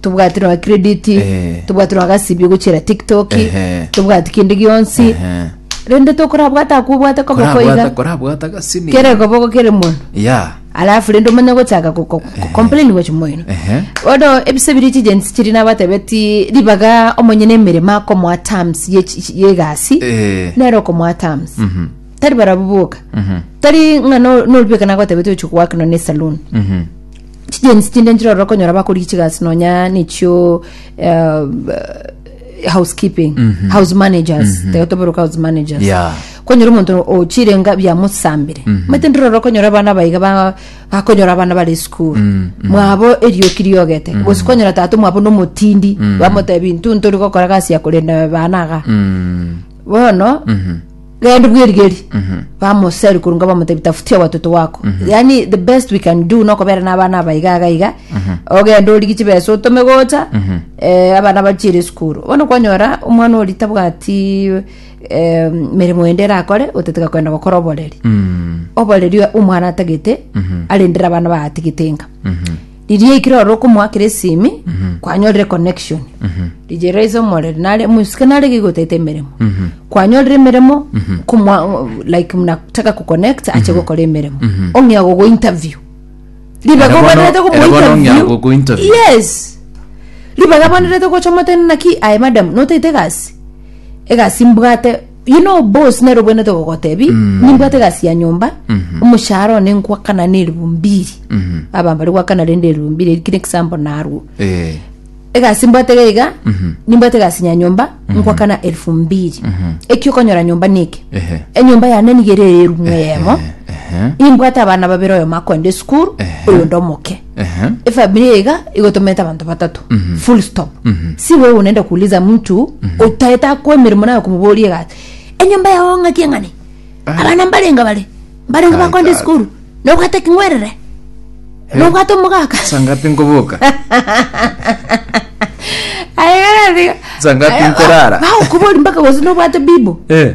tobwati nonya credit Ehe. tobwati nonya gasibio gochera tiktok Ehe. tobwati kende gionsi Ehe. rende tokorabwata akobwate kobo Korabwata- koiga korabwata gasini kere koboko kere mono ya alafu rende omanye gochaka ko- ko- ko- complain gochi moino Ehe. bono ebise biri chigensi chiri nabatebeti ribaga omonye na emeremo akomoa terms ye chi- chi- yegasi Eh. nero okomoa terms tari barabwo boka tari ng'a no- noribeka nagotebeti ochi goakana ne saloon Mhm. Chijensi chinde nchire ororo konyora bakorigia chigasi nonya nechio eh, housekeeping house managers taigo toberuka house managers Yeah. konyora omonto ochirenga biamosambire mate ndire ororo konyora abana baiga ba- bakonyora abana bare school mwabo erioki riogete gose konyora tato mwabo nomotindi bamotebi ntu ntori gokora gasi ya korenda bana aga Mm. bono genda bwerigerie bamoseri korwa nga bamotebi tafutia watoto wako yani the best we can do nokobera n'abana aba iga iga iga ogenda origi chibesa otome gocha eh, abana bachiere esukuru bono kwanyora omwana ori tabwati eh, meremo ende erakore oteteka kogenda gokora oboreri oboreri omwana atagete arendere abana baatigete inga riria ekero ore okomoakera esimi kwanyorire connection riria raise omorere nare mosike nare gigotaete emeremo kwanyorire emeremo komwa like mnataka kuconnect ache gokora emeremo ong'e agogo interview ribaga Era bono- obwenerete era bono ong'ea okomointerview gogo interview. yes ribaga abwenerete gocha omotenena ki aye madam notaete egasi egasi mbwate You know boss nero bwenete gogotebi nimbwate gasi ya nyomba omoshahara one ngwakana na elfu mbili aba mbari gwakana rende elfu mbili eri kire example narwo Eh. egasi mbwate gaiga nimbwate gasi ya nyomba ngwakana elfu mbili eki okonyora nyomba niki Ehe. enyomba yane niga ere erumwe yemo Ehe. imbwate abana babere oyo makoende esukuru oyo ndomoke Ehe. efamilia iga igotomerete abanto batato full stop si wewe unaenda kuuliza mtu utaeta akwa emeremo nayo kumuboria egasi enyomba yao ng'aki eng'ane abana mbarenga bare mbarenga Kai, bakonde kai. esukuru nobwate king'werere nobwate omogaka sangapi nkoboka Sangapi nkorara? baukubori mpaka gose nobwate bibo Eh.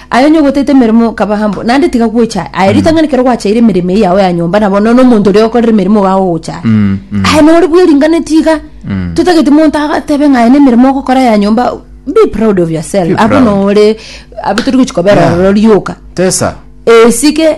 Aye onye ogotete emeremo okabaha mbo, naende tiga gwecha aye. Aye ritang'ani kero gwachaire emeremo eye yao ya nyomba nabo nono omonto oria okorera emeremo iga agogocha. Mm, mm. Aye nore bwe ringane tiga. Mm. Totagete monto agatebe ng'a aye nemeremo ogokora ya nyomba. Be proud of yourself. Be Abo proud. nore abo tori gochi kobera Yeah. ororo rioka. Tesa. Esike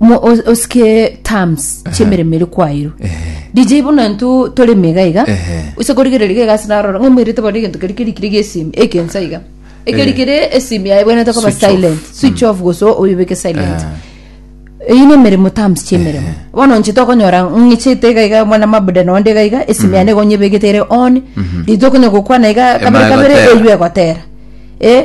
Mo- os- osike terms chi'emeremo ere kwairwe dj bono ntũ tore mega iga Ehe. ase korigereria iga egasi narora ng'a omoirete bare egento keria kerikire gia esimi ekensa iga ekeri Eh. kere esimi yaye ebwenerete koba Switch off. silent switch off gose oyebeke silent Ah. eyi ne emeremo terms chi'emeremo bono nche tokonyora ng'ichete iga iga mwana mabuda nonde iga iga esimi yane iga onyebegete ere on rito okonya gokwana iga kabere Ema kabere egotera. eywo egotera eh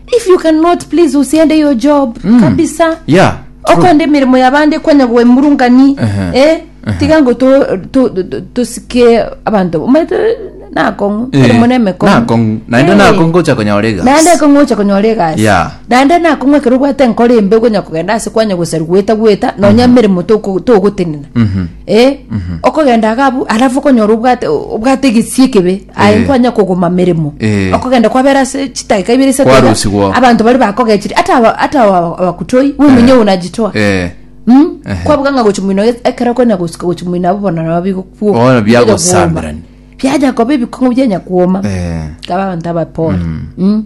If you cannot please usiende your job kabisa. Yeah. true. Okonde emirimo yabande kwanya gwemurungani. Ehe. Eh, tiga ngo to- to- to- tosike abanto. Omanyete nakong'u, Eh, erimo na emekong'u. nakong'u. Naende Eh. nakong'u gocha konyora egasi. naende ekong'u ocha konyora egasi Yeah. naende nakong'u ekero obwate enkoro embe okonya kogenda ase kwanya gosari gweta gweta nonya emeremo toko- togotenena Mhm. Eh, okogenda iga abwo alafu okonyora obwate obwate egesie ekebe aye Eh. nkwanya kogoma meremo Eh. okogenda kwabera ase chidakika ibere isato iga, Kwarusigwa. abanto bari bakogechire ata aba- ata aba- abakutoi bwomenye Eh. onajitoa Eh, Mm. Ehe. kwabuga ng'a gochi mwino ekero kwena gosika gochi mwino abo bono nabo bigokwo Bono biagosamirani. biaja koba ebikong'o bianya kwoma eh. abanto abapore Mm.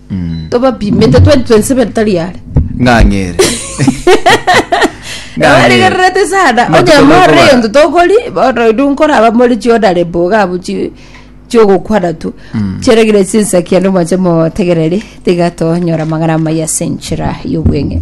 tobapimete 2027 tari are ng'ang'ere abarigererete sana Matuko onye morore bakobara. egento tokori bono inwe nkoraba more chiodare boga abo chi- chiogokwana tu chiaregire chinsakia nomwanche motegereri tiga tonyora amang'ana amaya ase enchera y'obweng'e